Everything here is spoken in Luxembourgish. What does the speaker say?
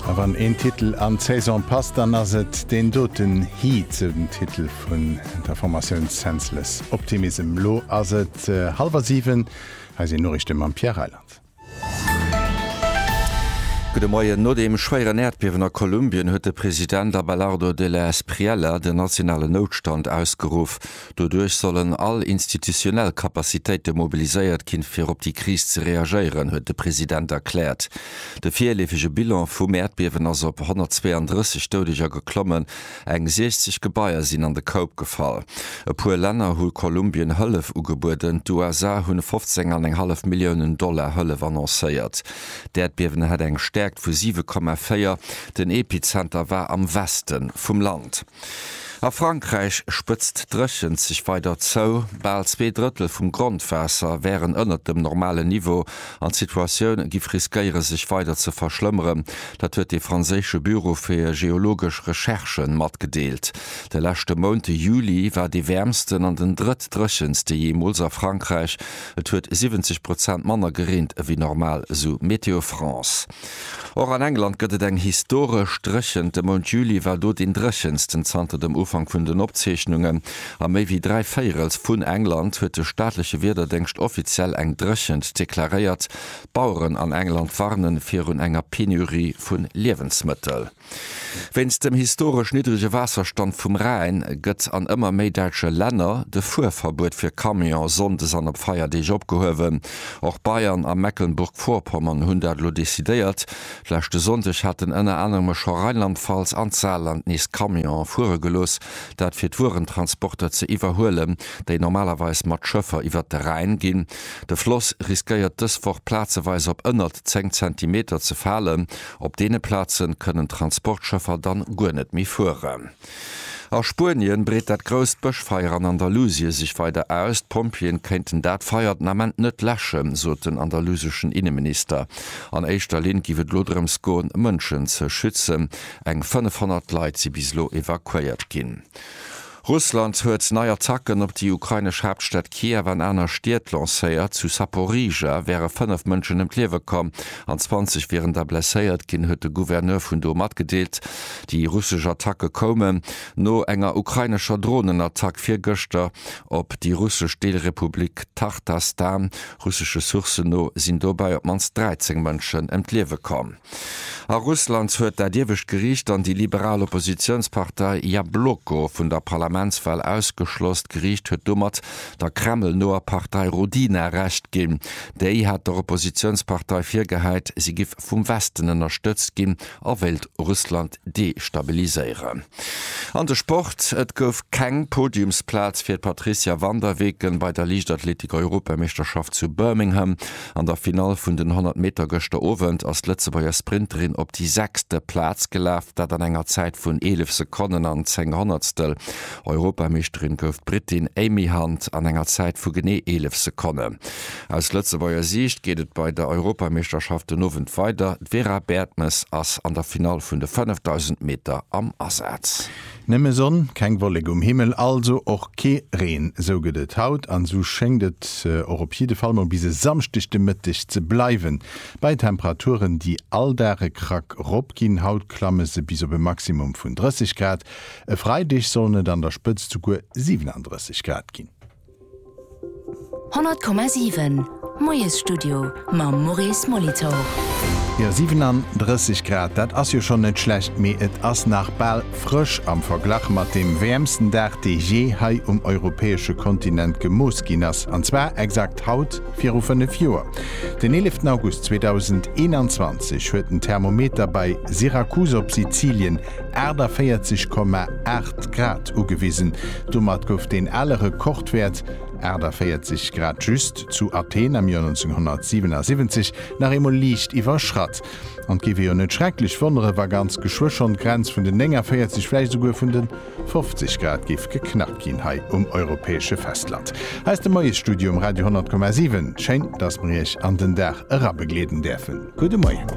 A wann een Titel an d'Saison passt, dann ass et deen doten Heat, sou den Titel vun der Formatioun Senseless Optimism. Elo ass et hallwer 7, hei sinn d'Noriichte mam Pierre Reyland. Gudde Moien. No deem schwéieren Äerdbiewen a Kolumbien huet de President Abelardo Della Espriella den nationalen Noutstand ausgeruff. Doduerch sollen all institutionell Capacitéite mobiliséiert ginn, fir op déi Kris ze reagéieren, huet de President erkläert. De virleefege Bilan vum Äerdbiewen ass op 132 Doudeger geklommen, eng 60 Gebaier sinn an de Koup gefall. E puer Länner hu Kolumbien Hëllef ugebueden, d'USA hunn 15 an eng hallef Milliounen Dollar Hëllef annoncéiert. D'Äerdbiewen hat eng Stäerkt vu 7,4, den Epizenter war am Weste vum Land. A Frankräich spëtzt d'Dréchent sech weider zou. Bal zwee Drëttel vum Grondwaasser wären ënnert dem normalen Niveau an d'Situatioun giff riskéiere sech weider ze verschlëmmeren. Dat huet de franséische Büro fir geologesch Recherchen matgedeelt. De leschte Mount, de Juli, war dee wäermsten an den drëttdréchenste jeemools a Frankräich. Et huet 70 Prozent manner gereent ewéi normal, esou Météo France. Och an England gëtt et eng historesch Dréchent. De Mount Juli war do deen dréchensten zanter dem Ufank vun den Opzeechnungen. A méi wéi dräi Véierels vun England huet de staatleche Wiederdéngscht offiziell eng Dréchent deklaréiert. D'Baueren an England warnen virun enger Penurie vun Liewensmëttel. Wéinst dem historesch niddrege Waasserstand vum Rhäin gëtt an ëmmer méi däitsche Länner de Fuerverbuet fir Camion sonndes an op Feierdeeg opgehuewen. Och Bayern a Mecklenburg-Vorpommern hunn dat elo decidéiert. Leschte Sonndeg haten ënner anerem scho Rheinland-Pfalz an d'Saarland nees Camionen fuere gelooss, dat fir d'Wuerentransporter ze iwwerhuelen, déi normalerweis mat Schëffer iwwert de Rhäin ginn. De Floss riskéiert dës Woch plazeweis op ënnert 10 Zentimeter ze falen, Op deene Plazen kënnen d'Transportschëffer dann guer net méi fueren. A Spuenien breet dat grousst Bëschfeier an Andalusie sech weider aus. D'Pompjeeën kéinten dat Feier den Ament net läschen, sot den andaluseschen Inneminister. An éischter Linn giff et elo drëms goen, Mënschen ze schützen. Eng 500 Leit si bis elo evakuéiert ginn. Russland huet nei Attacken op déi ukrainesch Haaptstad Kiew an aner Stied lancéiert. Zu Saporižžja wäre fënnef Mënschen ëm d'Liewe komm an 20 wieren da blesséiert ginn, huet de Gouverneur vun do matgedeelt. Déi russesch Attacke koumen no enger ukrainescher Dronenattack virgëschter op déi russesch Deelrepublik Tachtastan. Russesche Sourcen no sinn dobäi op d'mannst 13 Mënschen ëm d'Liewe komm. A Russland huet dat iewescht Geriicht dann déi liberal Oppositiounspartei Jabloko vun der Parlamentswal ausgeschloss. D'Geriicht huet domat der Kreml-noer Partei Rodina Recht ginn. Déi hat der Oppositiounspartei virgehäit, si giff vum Westen ënnerstëtzt ginn a wéilt Russland destabiliséieren. An de Sport, Et gouf keng Podiumsplaz fir d'Patrizia Vanderweken bei der Liichtathletik-Europameeschterschaft zu Birmingham. An der Finall vun den 100 Meter gëschter Owend ass d'Lëtzebuerger Sprinterin op déi sechste Plaz gelaf, dat an enger Zäit vun 11 Sekonnen an 10 Honnertstel. Europameeschterin gouf d'Britin Amy Hunt an enger Zäit vu genee 11 Sekonnen. Aus Lëtzebuerger Siicht geet et bei der Europameeschterschaft den Owend weider. D'Vera Baertmes ass an der Finall vun de 5000 Meter am Asaz. Nëmme Sonn, keng Wollek um Himmel, also och kee Reen, sou gëtt et haut an esou schéngt et och op jidde Fall mol bis e Samschdeg de Mëtteg ze bleiwen, bei Temperaturen déi all Dag e Krack rop ginn. Haut klamme se bis op e Maximum vun 30 Grad, e Freideg sollen et an der Spëtzt souguer 37 Grad ginn. 100,7 Moiesstudio mam Maurice Molitor. Jo, 37 Grad, dat ass jo schonn net schlecht, mee et ass nach bal frësch am Verglach mat deem wäermsten Dag, dee jee hei um europäesche Kontinent gemooss ginn ass, an zwar exakt haut viru 5 Joer. Den 11 August 2021 huet den Thermometer bei Syrakus op Sizilien 48,8 Grad ugewisen. Domat gouf deen ale Rekordwäert, 48 Grad just, zu Athen am Joer 1977 nach eemol liicht iwwerschratt. An et géif ee jo net schrecklech wonneren, wa ganz geschwë schonn d'Grenz vun den 49, vläicht esouguer vun de 50 Grad géif geknackt ginn hei um europäesche Festland. Aus dem Moiesstudio um Radio 100,7 schéin, dass mer Iech an den Dag erabegleeden däerfen. Gudde Moien.